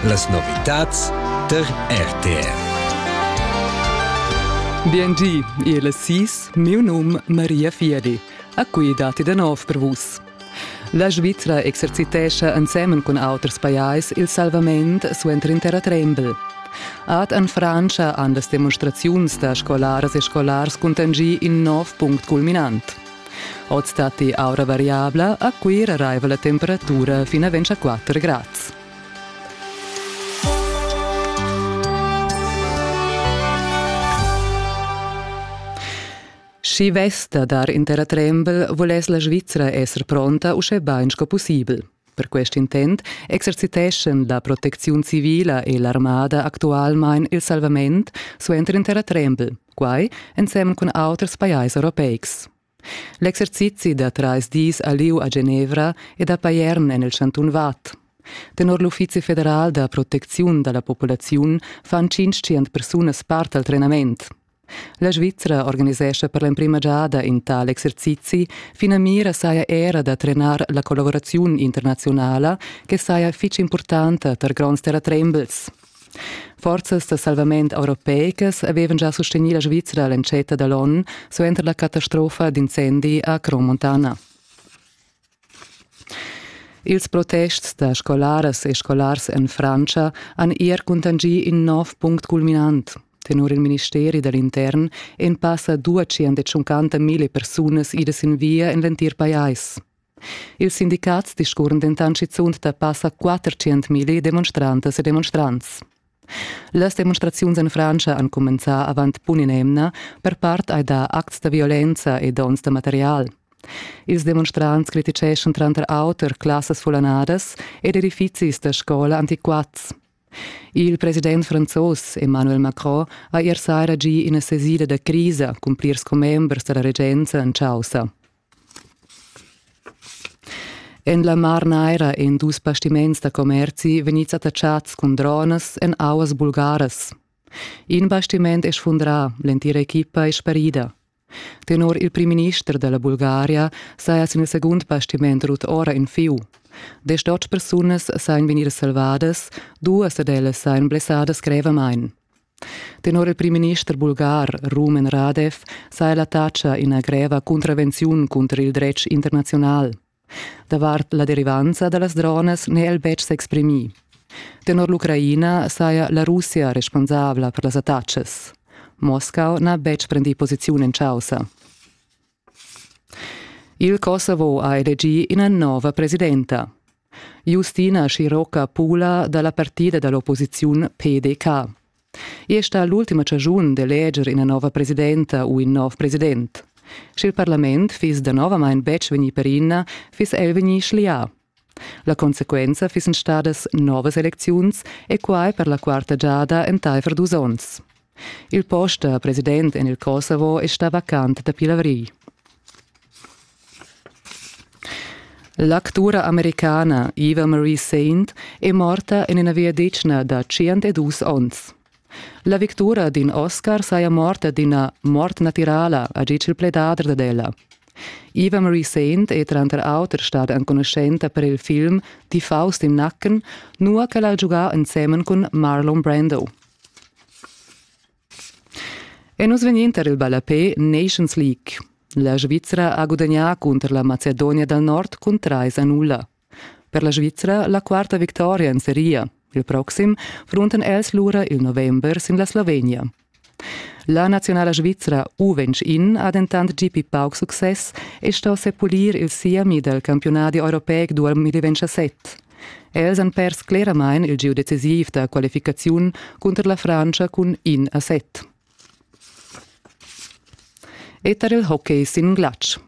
Las novitads tar RTR. BNG, il sis, miu num Maria Fieri. A qui dati da nov per vus. La Svizzera exercitescha ensemen cun auters pajais il salvament suenter intera trembel. Ad an Frantscha han las demonstraziuns da scolaras e scolars contingì in nov punct culminant. Oz datti aura variabla, a Cuira raiva la temperatura fin a 24 grads. Schi vesta dar intera trembel vuless la Svizra esser pronta uschè bain sco pussibel. Per quest intent exerciteschan la protecziun civila e l'armada actualmain il salvament suenter intera trembel, quai ensemen cun auters pajais europeics. L'exercizi da trais dis a lieu a Genevra ed a Payern en il chantun Vad. Tenor l'Uffizi federal da protecziun da la populaziun fan tschintg persunas part al trenament. La Svizra organisescha per l'emprima giada in tal exercizi. Finamira saja era da trenar la collaboraziun internazionala che saja fitg impurtanta per gronds terratrembels. Forzas da salvament europeicas avevan già sustegnì la Svizra l'entschatta da l'onn suenter la catastrofa d'incendi a Cromontana. Ils protests da scolaras e scolars en Frantscha han er cuntanschì in nov punct culminant. Tenor il ministeri da l'intern èn passa 250.000 persunas idas sin via en l'entir pajais. Ils sindicats discurran dentant schizunt da passa 400.000 demonstrantas e demonstrants. Las demonstraziuns en Frantscha han cumenzà avant pun in'emna, per part hai dà acts da violenza e donns da material. Ils demonstrants criticeschan tranter auter classas fullanadas ed edifizis da scola antiquats. Il president franzos Emmanuel Macron ha ier saira gì ina sesida da crisa cun plirs commembers da la regenza en chaussa. En la mar naira ein dus bastiments da commerzi vegnids attaccads cun dronas en auas bulgaras. In bastiment è sfundrà, l'entira equipa è sparida. Tenor il primminister della Bulgaria saja sin il secund bastiment rut ora in fiu. Desch persuni sajan vegnidas salvadas, duas ed ellas sajan blessadas grevamain. Tenor il primminister bulgar Rumen Radev saja la Tatscha ina greva cuntravenziun cunter il dretg internaziunal. Davart la derivanza da las dronas n'è el betg s'exprimì. Tenor l'Ucraina saja la Russia responsabla per las attacas. Moscau n'ha betg prendì posiziun en chaussa. Il Cosovo ha elegì ina nova presidenta. Justina Sirocca Pula da la partida da l'opposiziun PDK. I è stà l'ultima chaschun d'eleger ina nova presidenta u in nov president. Sch'il parlament fiss danovamain betg vegnì per Inna, fiss el vegnì schlià. La consequenza fissen stadas novas elecziuns e quai per la quarta giada entaifer dus onns. Il post da president en il Kosovo è stà vacant dapi l'avrigl. L'actura americana Eva Marie Saint è morta en ina viadetgna da 102 onns. La victura d'in Oscar saja morta d'ina mort natirala, ha ditg il pledader dad ella. Eva Marie Saint è tranter auter stada enconuschenta per il film Die Faust im Nacken, nua ch'ella ha giugà ensemen cun Marlon Brando. E nus vegnin tar il ballapé Nations League. La Svizra ha gudagnà cunter la Macedonia dal Nord cun 3 a 0. Per la Svizra la quarta victoria en seria. Il proxim fruntan els lura il november sin la Slovenia. La nazionala svizra Uvenc-in ha dentant gì pli pauc success e sto sepulir il siemi dal campiunadi europeic 2017. Els han pers cleramain il giu decisiv da qualificaziun cunter la Frantscha cun in a set. E tar il hockey sin glatsch.